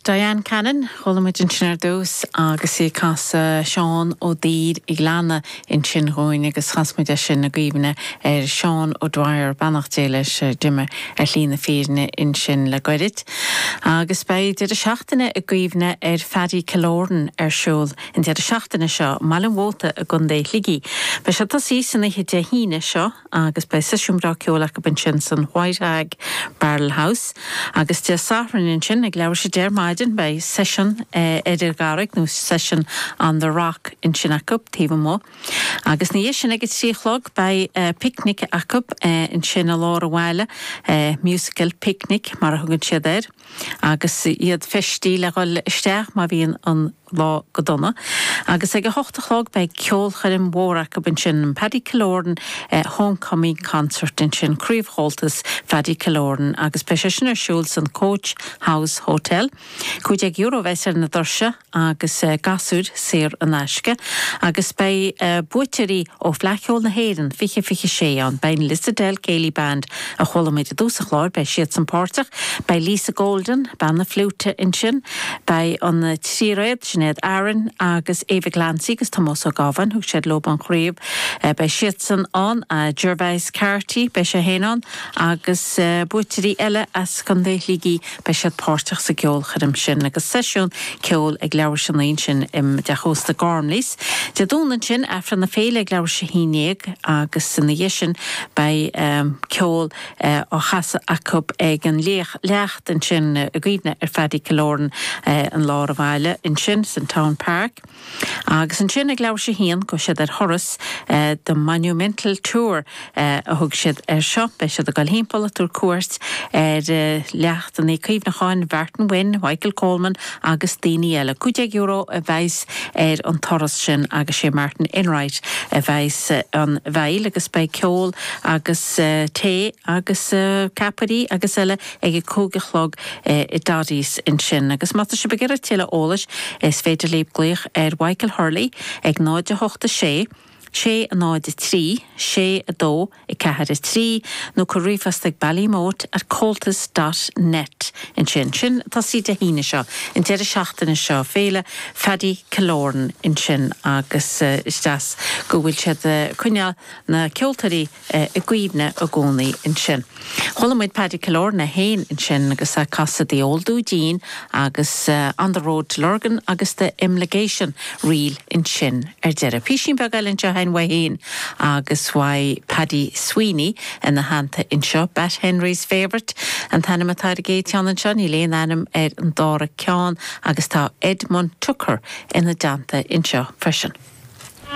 Diane Cannon, Chuala muid ansin ar dtús agus í ag casadh Seán Ó Duibhir a' Ghleanna ansin dhúinn agus chas muid é sin i gcuimhne ar Sheán O'Dwyer, beannacht Dé leis, a d'imigh ar shlí na fírinne ansin le goirid. Agus beidh deireadh seachtaine i gcuimhne ar Phaddy Killoran ar siúl an deireadh seachtaine seo i mBaile an Mhóta i gContae Shligigh. Beidh sé ag tosaí san oíche Dé hAoine seo, agus beidh seisiún breá ceoil acu ansin san White Hag Barrel House agus Dé Sathairn ansin ag leathuair tar éis a deich ar maidin beidh seisiún ar an gCarraig nó session on the Rock ansin acu taobh amuigh agus ina dhiaidh sin ag a trí a chlog beidh picnic acu ansin i lár an bhaile musical picnic mar a thugann siad air agus iad feistithe le dhul isteach má bhíonn an lá go dona, agus ag a hocht a chlog beidh ceolchoirm mhór acu ansin, an Paddy Killoran Homecoming Concert ansin, Craobh Chomhaltas Phaddy Killoran, agus beidh sé sin ar siúl san Coach House Hotel. €15 a bheas ar na doirse agus gasúir saor in aisce. Agus beidh buaiteoirí ó Fleadh Cheoil na hÉireann 2026 ann. Beidh an Lissadell Céilí Band A chuala muid i dtús an chláir, beidh siadsan páirteach. Beidh Lisa Golden, bean na fliúite, ansin. Beidh an tríréad, Sinéad, Aaron agus Ava Glancy agus Tomás Ó Gábháin, thug siad leo an chraobh, beidh siadsan ann. Gervais Carty, beidh sé féin ann agus buaiteoirí eile as Contae Shligigh. Beidh siad páirteach sa gceolchoirm sin agus seisiún ceoil ag leathuair tar éis a naoi ansin i dteach ósta Gormleys. Dé Domhnaigh ansin, Aifreann na Féile ag leathuair tar éis a haon déag agus ina dhiaidh sin beidh ceol á chasadh acu ag an leacht ansin i gcuimhne ar Phaddy Killoran, i lár a' bhaile ansin san Town Park. Agus ansin ag leathuair tar éis a haon gabhfaidh siad ar thuras, the monumental tour a thug siad air seo. Beidh siad ag dul thimpeall ag tabhairt cuairt ar leachtannaí cuimhneacháin Mhartin Wynne, Mhichael Coleman agus daoine eile. Cúig déag euro a bheas ar an turas sin agus sé Martin Enright a bheas ina bhfeighil agus beidh ceol agus tae agus ceapairí agus eile ag a cúig a chlog i Doddy's ansin. Agus má tá sibh ag iarraidh tuilleadh eolais is féidir libh glaoch ar Mhichael Hurley ag 0 8 6 6 0 3 6 2 4 3 nó cuir ríomhphost ag ballymote at comhaltas dot net ansin. Sin ag tosaí Dé hAoine seo, an deireadh seachtaine seo, Féile Phaddy Killoran ansin agus is deas go bhfuil siad ag coinneáil na ceoltóirí, i gcuimhne i gcónaí ansin. Chuala muid Paddy Killoran féin ansin agus é ag casadh The Old Dudeen agus On the Road to Lurgan agus The Imligation Reel ansin ar deireadh. Písín beag eile anseo againn uaidh féin agus uaidh Paddy Sweeney ina theannta anseo. Batt Henry's Favourite an t-ainm atá ar an gcéad cheann anseo, níl aon ainm ar an dára ceann agus tá Edmund Tucker ina dteannta anseo freisin.